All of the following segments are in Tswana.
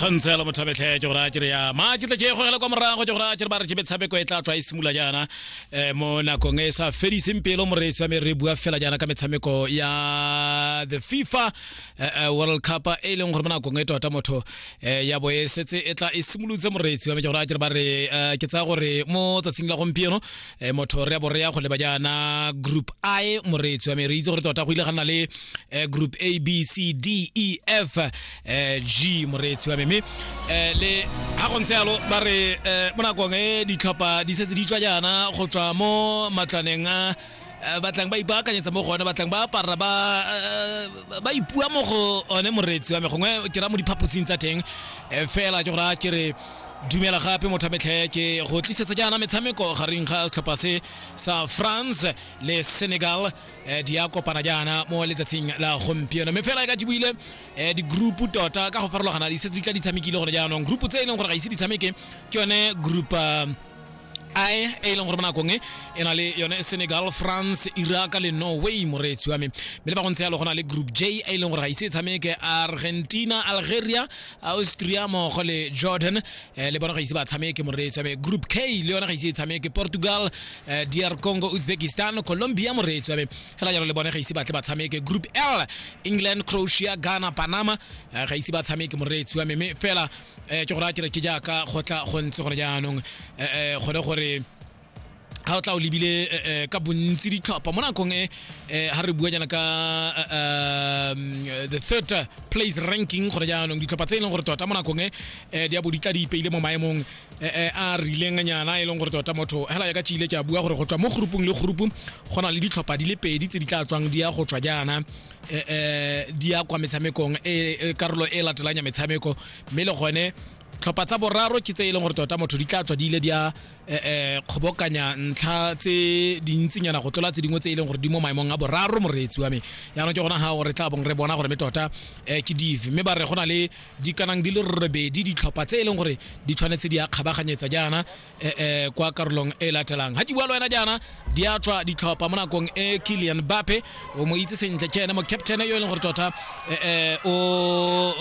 kgontse ya lomothabetlhe ke gore a kere ya ma ke tle ke gogela kwa morago ke gore a kere ba re ke metshameko e tla tswa e simula jaana um mo nakong e sa fediseng pelo moreetsi wa me re bua fela jaana ka metshameko ya the fifa eh, eh, world cup e leng gore mo nakong e tota motho eh, ya bo e setse e tla e simolotse moreetsi wa me ke gore a kere ba re ke tsaya gore mo tsatsing la gompieno motho re ya bo re ya go leba jaana group i moreetsi wa me re itse gore tota go ile ga nna le group a b c d e f g moreetsi wa me mme le ga go ntse yalo ba re mo nakong e ditlhopha di setse di tswa jaana go tswa mo matlwaneng a eh, batlang ba ipaakanyetsa mo go one batlang ba apara ba eh, ba ipua mo go one moreetsi wa me gongwe ke ra mo diphaposing tsa teng eh, fela ke gore a ke re dumela gape motho metlhe ke go tlisetsa jaana metshameko gareng ga setlhopha se sa france le senegal eh, di ya kopana jaana mo letsatsing la gompieno mme fela e ka tibile eh, di-group tota ka go farologana di setse di tla di tshamekile gone jaanong group tse e leng gore ga ise di tshameke ke yone group uh, ae e e leng gore mo nakong e e na le yone senegal france iraq le norway moreetsi wa me mme le ba go ntse yalo go na le group j e e leng gore ga ise e tshameke argentina algeria austria mmogo le jordan eh, le bona ga ise ba tshameke moreetsi wa me group k le yone ga ise e tshameke portugal eh, dr congo uzbekistan colombia moreetsi wa me fela jalo le bone ga ise batle ba tshameke group l england croatia ghana panama eh, ga ise ba tshameke moreetsi wa me mme fela um ke go raya kere ke jaaka go tla go ntse gore jaanong um gone gore ga o tla o lebile ka bontsi ditlhopha mo nakong e ga re bua jaana ka the third place ranking gore jaanong ditlhopha tse e leng gore tota mo nakong e di a bo di tla di ipeile mo maemong a rileng nyana e leng gore tota motho hela ya ka tšile ke a bua gore go tswa mo groupong le group go na le ditlhopha di le pedi tse di tla tswang di ya go tswa jaana eh, eh, di ya kwa metshamekong e, e karolo e latelang ya metshameko mme le gone tlhopha tsa boraro ke tse e leng gore tota motho di tla tswa di ile di a eh, eh, kgobokanya ntlha tse dintsinyana go tlola tse dingwe tse e leng gore di mo maemong a boraro moreetsi wa me yaanong ke gona ga gore tla bong re bona gore me tota eh, ke dife mme ba re go na le dikanang di le robedi ditlhopha tse e leng gore di tshwanetse di a kgabaganyetsa jaana eh, eh, kwa karolong e latelang ga ke bua le wena jaana di a tswa ditlhopha mo nakong e kilian bape o mo itse sentle ke ene mo captain yo e leng gore tota eh, eh, o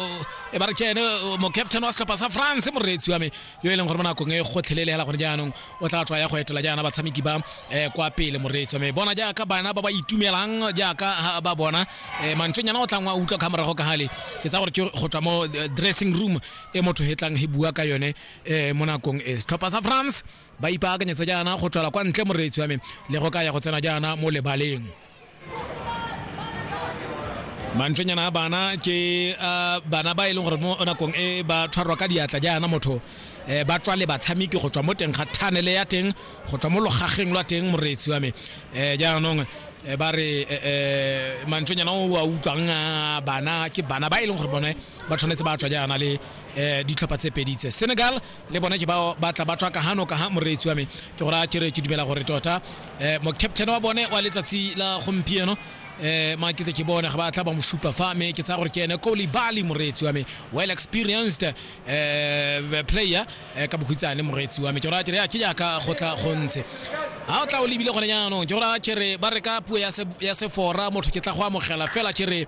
e ba re ke ene mo captain wa setlhopha sa france moreetsi wa me yo e leng gore mo nakong e gotlhelele hela gone jaanong o tla tswa ya go etela jaana batshameki ba eh, kwa pele moreetsi wa me bona jaaka bana ba ba itumelang jaaka ba bona eh, mantšonyana o tlang wa utlwa ka morago ka gale ke tsa gore ke go tswa mo eh, dressing room e motho hetlang he bua ka yone eh mo nakong e setlhopha sa france ba ipaakanyetsa jaana go tswala kwa ntle moreetsi wa me le go ka ya go tsena jaana mo lebaleng mantswenyana a bana ke ah, bana ba e leng gore mo nakong e ba tshwarwa ka diatla jaana motho eh, ba tswa le batshameki go tswa mo teng ga thanele ya teng go tswa mo logageng lwa teng moreetsi wa me eh, jaanong eh, ba re eh, eh, mantswenyana o a utlwang ah, bana ke bana ba e leng gore bone ba tshwanetse ba tswa jaana le um ditlhopha tse pedi tse senegal le bone ke bao ba tla ba tswa ka gano ka ga moreetsi wa me ke gore a kere ke dumela gore tota um mocaptain wa bone wa letsatsi la gompieno eh ma ke ke bona ga ba tla ba mo supa fa me ke tsa gore ke ene Koli Bali moretsi wa me well experienced eh player eh, ka bokhitsane moretsi wa me ke ra ke ya ke ya ka go tla go ntse ha o tla o lebile gone jaanong ke gore a kere ba re ka puo ya se ya sefora motho ke tla go amogela fela kere